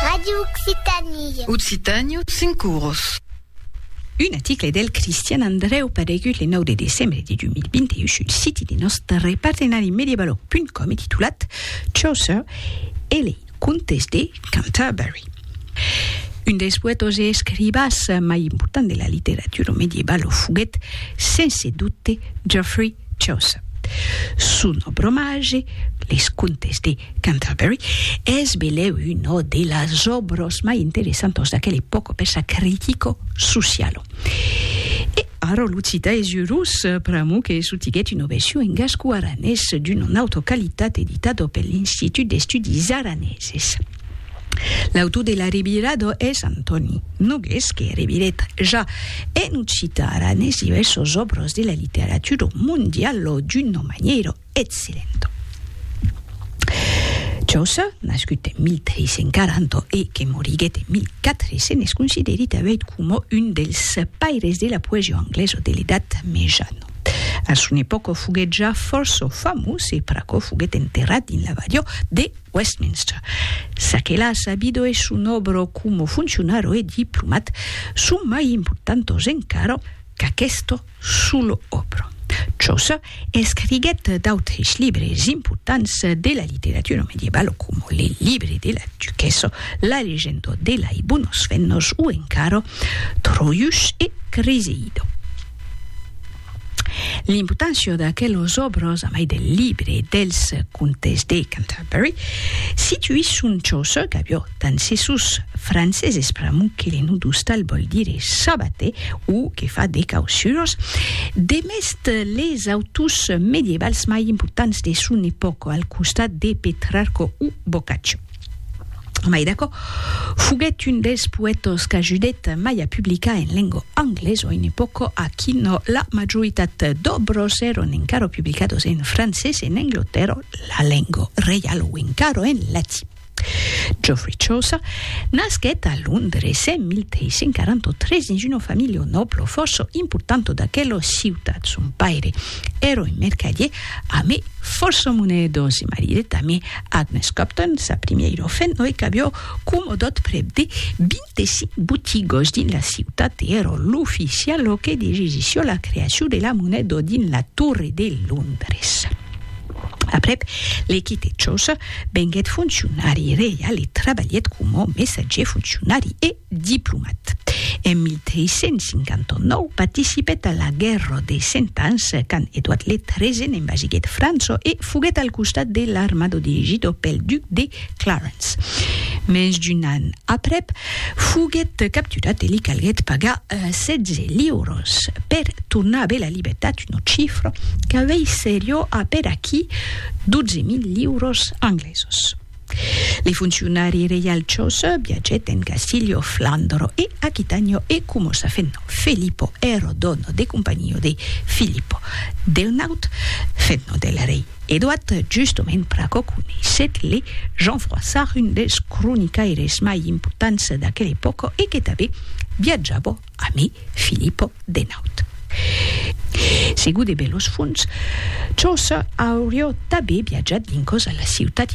Radio Occitanie. Occitània, cinc oros. Un article del Cristian Andreu paregut le 9 de decembre de 2021 sul siti de nòstre partenari mediabalog.com e titulat Chaucer e lei contes de Canterbury. Un dels poètos e escrivas mai importants de la literatura medievalo foguèt, sense dubte, Geoffrey Chaucer. Son obromage, Les Contes de Canterbury, es belèu una de las òbras mai interessantas d'aquela epòca per sa critica sociala. E ara lo cita es urós pr'amor que sotiguèt una version en gasco-aranés d'una nauta qualitat editada per l'Institut d'Estudis Araneses. L'autor de la revirada es Antòni Nogués que revirèt ja en occitan aranés divèrsos òbras de la literatura mondiala d'una manièra excellenta. Chaucer, nascut en 1340 e que moriguèt en 1400, es considerit avèit coma un dels paires de la poesia anglesa de l'Edat Mejana. A son epòca foguèt ja fòrça famós e pr'aquò foguèt enterrat dins l'abadiá de Westminster. Ça que l'a sabido e son òbro como funcionaro e diplomat son mai importantos encara qu'aquesto solo òbro. Chaucer escriguèt d'autres libres importants de la literatura medievalo como le Libre de la Duquessa, La Legenda de lei Bonos Fennos o encara Troius e Criseido. L'importància d'aquelos òbros, a mai del libre dels contes de Canterbury, situi son chòs qu'avió tant se sos franceses pr'amor que le nudustal vòl dire sabater o que fa de causuras, demest les autors medievals mai importants de son epòca al costat de Petrarco o Boccaccio. Mai d'aquò, foguèt un dels poètas qu'ajudèt mai a publicar en lenga anglesa a una epòca a quina la majoritat d'òbras èran encara publicadas en francés en Anglatèrra, la lenga reiala o encara en latin. Geoffrey Chaucer nasquèt a Londres en 1343 dins una familha nòbla fòrça importanta d'aquela ciutat. Son paire èra un mercadier amé fòrça monedas e maridèt amé Agnes Copton, sa primièira ofent noi qu'avió comodot prèp de 25 botigòs dins la ciutat e èra l'oficial lo que degisissió la creacion de la moneda dins la Torre de Londres. Aprèp, le quitèt çò-ce, venguèt foncionari reial e trabalhèt coma messatgier foncionari e, Diplomat. En 1359 participèt a la Guèrra de Cent Ans, quand Edouard le Tresen envasiguèt França e foguèt al costat de l'armada dirigida pel duc de Clarence. Mens d'un an aprèp, foguèt capturat e li calguèt pagar 16 liuras per tornar aver la libertat, una chifra qu'aveisseriá aperaquí 12.000 liuras anglesas. Li foncionari reialchos biagèt en Castilho, Flandro e Aquitanio e comossa fent nom Felipo ero dono de companio de Filippo del Naut, fent nom del rei Edoat, justement pr'aquò coneissèt le Jean Froissart, un dels cronicaires mai impotants d'aquela epòca e que tanben biajava amé Filippo de Naut. Segur de belos fonts, Chaucer aurió tanben biajat dins causa la ciutat